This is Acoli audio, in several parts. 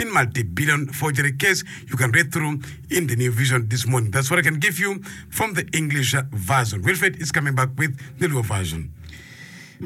in multibillion forgery case you can read through in the new vision this morning that's what I can give you from the English version Wilfred is coming back with the Luo version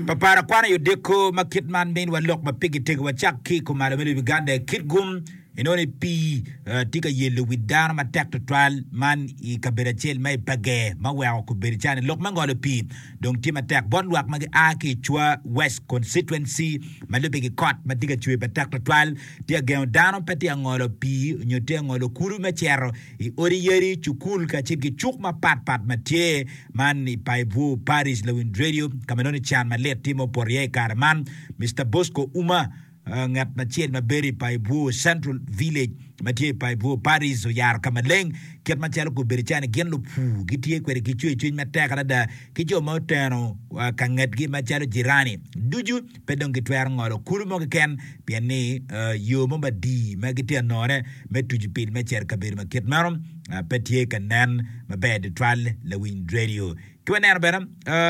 Papara kwano i odiko ma kit man miniwa lok ma pigi tego wacak ki i kumalo me lobo Uganda i Kitgum inongo ni pii tye ka yelo wi dano matek tutwal man i kabedo acel ma i Page ma weko kobedo calo ni lok me ngolo pii dong tye matek bot lwak ma gia ki i Chwa West Constituency ma lubbe ki kot ma tye ka cwer matek tutwal. Tye ka gengo dano pe tye ka ngolo pii nyo tye ka ngolo kulu me cito i odi yadi, cukul kacel ki cuk mapat pat ma tye man i Paibwu Parish. Lawiny redio ka ma nongo can malit tye ma opoto iye i kare man, Mister Bosco Ouma, Ngat acel ma bedo i Paibwo Central Village ma tye i Paibwo Parish oyaro ka maleng kit macalo gubedo calo ni gin lupur gitye kwede ki cwercwiny matek adada ki jo ma oteno ka ngetgi macalo jirani ducu pe dong gitwero ngolo kulu mo keken pien ni yo mo madii ma gitye ka nongone me tucu pil me cito i kabedo ma kit meno pe tye ka nen maber tutwal lawiny redio. Ki waneno bene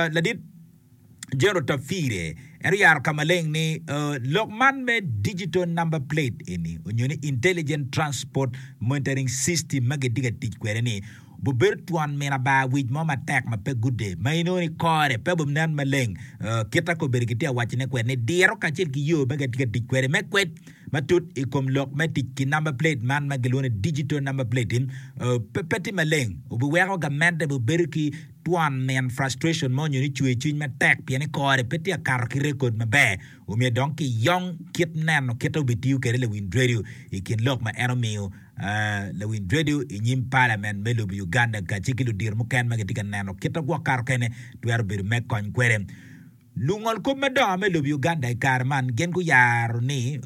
ladit Jero Tafire en oyaro ka maleng ni lok man me Digital Number Plate eni onyo ni Intelligent Transport Monitoring System ma gitye ka tic kwede ni obibedo twon mina bar wic mo matek ma pe gude ma inongo ni kore pe obinen maleng kita kobedo kitye ka wacone kwede ni diro kacel ki yo ma gitye ka tic kwede. Me kwed matut i kom lok me tic ki number plate man ma gilwongo ni Digital Number Plate pe tye maleng obiweko gamente obibedo ki Twon min, frustration, ma onyo ni cwer cwiny matek pien ni kore pe tye ka kato ki rekod maber omiyo dong ki yong kit neno kite obitiyo kede Lewin Dredio i kin lok ma en omiyo Lewin Dredio i nyim Parliament me lobo Uganda kace ki ludiro muken ma gitye ka neno kite gwok kato kene twero bedo me kony kwede. Lungol kop madongo me lobo i Uganda i kare man gin guyaro ni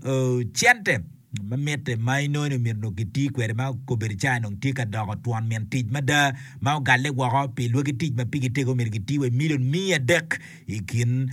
cente ma mitte ma inongo ni omyero onongo kiti kwede ma okobe-ri ca onongo tye ka doko twon min tic mada ma ogalle woko pi lwaki tic ma pigi tego myero giti wa i milion miya adek i kin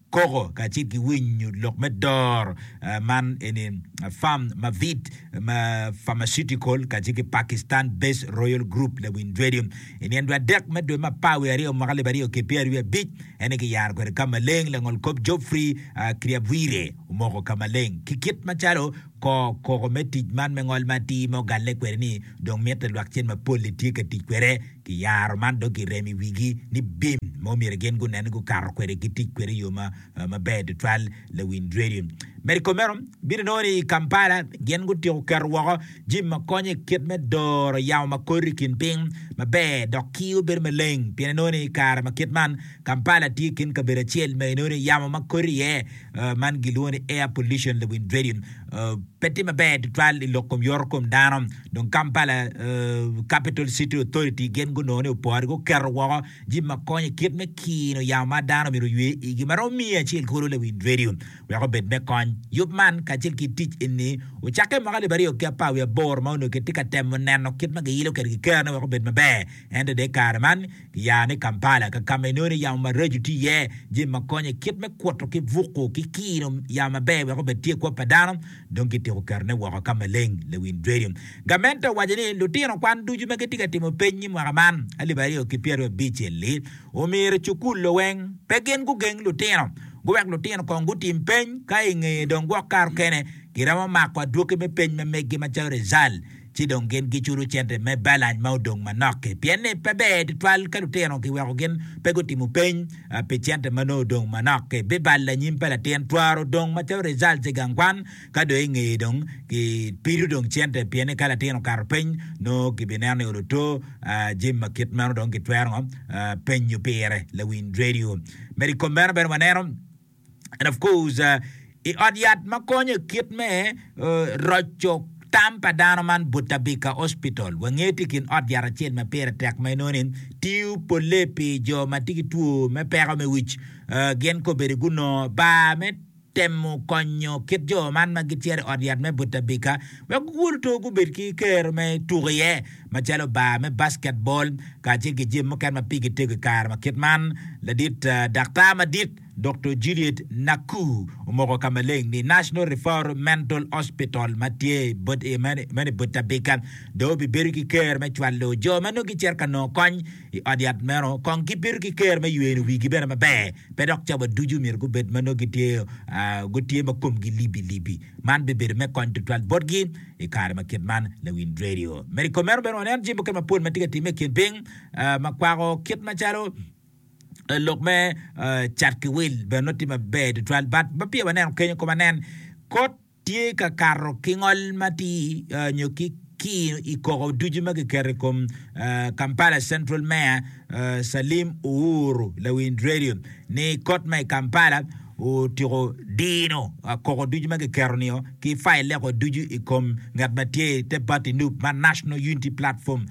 koko kacel ki winyo lok me doro man eni farm ma vit. ma Pharmaceutical kacel ki Pakistan Based Royal Group Lewin Dwedi i nino dwe adek me dwe me apar wiye aryo mwaka alip aryo ki pyeraryo abic ene ki yaro kwede ka maleng langol kop Geoffrey Kriabwire omoko ka maleng ki kit macalo kor koko me tic man me ngol ma atir ma ogalle kwede ni dong mitte lwak cen mapol ni tye ka tic kwede ki yaro man dong ki remo i wigi ni bim ma omyero gin gunen ni gukato kwede ki tic kwede i yo ma maber tutwal, Lewin Dweri medo kome meno. Bino nongo ni i Kampala gin gutyeko keto woko jim ma konyo i kit me doro yamo ma kori i kin piny maber dok kiyo bedo maleng pien inongo ni i kare ma kit man Kampala tye i kin kabedo acel ma inongo ni yamo ma kori iye man gilwongo ni air pollution Lewin Dweri pe tye maber tutwal i lok kom yoto kom dano dong Kampala Capital City Authority gin gunongo ni opore guketo woko jip ma konyo i kit me kino yamo ma dano myero oywe igi ma romo miye acel kulu Lewind Radio wek obed me kony. Yub man kacel ki tic eni ocakke mwaka alip aryo ki apar wiye aboro ma onongo kitye ka temo neno kit ma giilo kwede kikerne wek obed maber. Ento dong i kare man giyaro ni Kampala ka kama inongo ni yamo maraco tye iye, jip ma konyo i kit me kuto ki buko ki kino yamo maber wek obed tye i kwop pa dano. dong kitiko kerone woko ka maleng. Lewin Dredim, gamente owaco ni lutino kwan ducu ma gitye ka timo peny i mwaka man alip aryo ki pyeraryo abic-li omyero ecukul loweng pe gin gugeng lutino guwek lutino kong gutim peny ka ingeye dong gwok kar okene giromo mako adwoki me peny ma meggi macalo rizal ci dong gin giculo cente me balance ma odong manok-ki. Pien ni pe ber tutwal ka lutino kiweko gin pe gutimo peny pi cente ma nongo odong manok-ki. Bibal lanyim pa latin twero dong macalo results i gang kwan ka dong ingeye dong kipido dong cente pien ni ka latin okato peny nongo kibineno ni olo two. Jami ma kit meno dong kitwero ngo penyo pire lawiny radio. Medo i kom meno bene waneno. And of course, i ot yat ma konyo i kit me roco tam pa dano man, Butabika Hospital, wange tye i kin ot yat acel ma pire tek ma inongo ni tiyo polle pi jo ma tye ki two me peko me wic. Gin ka obedo gunongo bar me temo konyo kit jo man ma gicito i ot yat me Butabika wek gugulu two gubed ki kero me tuko iye macalo bar me basketball kacel ki jami mukene ma pigi tego i kare ma kit man. Ladit daktar madit. Doktor Juliet Naku omoko ka maleng ni National Referral Mental Hospital ma tye meno i Butabika dong obibedo ki ker me cwalo jo ma nongo gicito ka nongo kony i ot yat meno. Kong gibedo ki ker me yweno wigi bene maber, pe dok cawa ducu myero gubed ma nongo gitye ma komgi libbi-libbi. Man bibedo me kony tutwal botgi i kare ma kit man. Lawinj redio meno i kom meno bene waneno jami mukene mapol ma tye ka timme i kin piny ma kwako kit macalo, lok me cat ki wil bene nongo tye maber tutwal but ma peya waneno kenyo kong wanen kot tye ka kato ki ngol matir nyo ki kir i koko ducu ma kiketo i kom Kampala Central Mayor Salim Uhuru Lawin Radio ni kot ma i Kampala otyeko dino koko ducu ma kiketo nio ki file leko ducu i kom ngat ma tye i te party nup ma National Unity Platform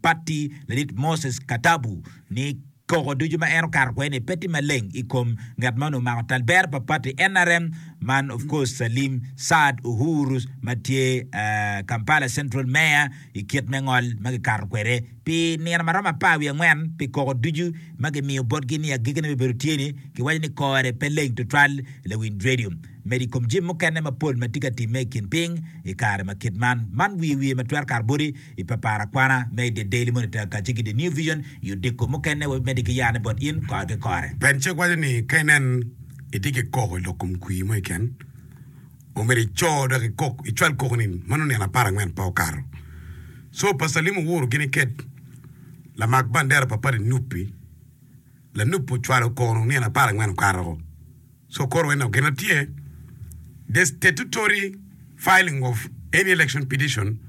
Patti ladit Moses Katabu ni koko ducu ma en okato kwede ni pe tye maleng i kom ngat ma onongo omako tal bero pa pati nrm man of course Salim Saad Uhuru ma tye Kampala Central Mayor i kit me ngol ma kikato kwede pi nino ma romo apar wiye angwen pi koko ducu ma kimiyo botgi ni agikine bene obedo tye ni kiwaco ni kore pe leng tutwal Lawiny Radio medo i kom jami mukene mapol ma tye ka timme i kin piny i kare ma kit man man wiye wiye ma twero kato boti I papara kwana ma i The Daily Monitor kacce ki The New Vision i odiko mukene, wabimedde ki yane bot in kore ki kore. Penncek waco ni ka inen itye ki koko lok kom kwir mo keken, o myero ico dok ikok, icwal koko ni mano nino apar angwen pe okato. Co pa Salim owuro gini ked lamak bandera pa pati nup-pi, lanup-pi ocwalo koko nino apar angwen okato-o. Sokoro ena ogena tye The statutory filing of any election petition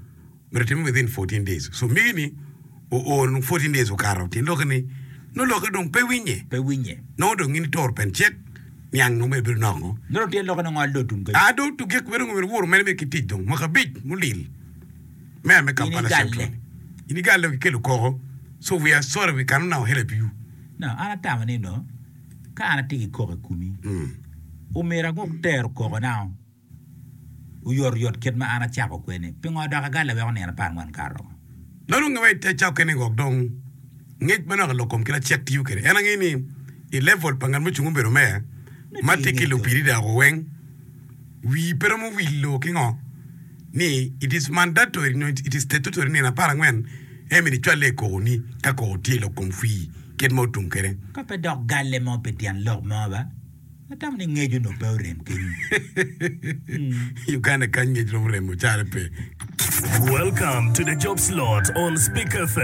myero time within fourteen days. So mege ni oor nung fourteen days okato tyen lokke ni nongo lokke dong pe winye. Pe winye. Nongo dong in itoro pen cek niang nongo mere bino nok ngo. Nongo tyen lokke nongo ado tum kany. Ado tuge kube nongo myero wor mere mere ki tic dong mwaka abic mulil. Mayor me Kampala Ini galle. Central. Ini galle kikelo koko. So we are sorry we cannot now help you. No, an atamo ni nongo. Ka an atye ki koko i komi, omera gwok tero kokona oyotoyot kit ma an acako kwede-ni. Pingo adoko agalle weko nino apar angwen kato? Nongo nonge wa i te cawa kene-ni wek dong ngec ma naka lok kom kit acel tiyo kwede. En angeyo ni i level pa ngat mucung obedo meya ma tye ki lubiri dako weng, Wii pe romo wilo ki ngo ni it is mandatory nyo it is statutory nino apar angwen en myero icwalle i koko ni ka koko tye lok kom fwii kit ma otum kwede. Ka pe dok galle mo pi tyen lok mo ba, atamo ni ngec onongo pe orem kenyo. Uganda kany ngec romo remo caro pe. Welcome to the job slot on Speak FM.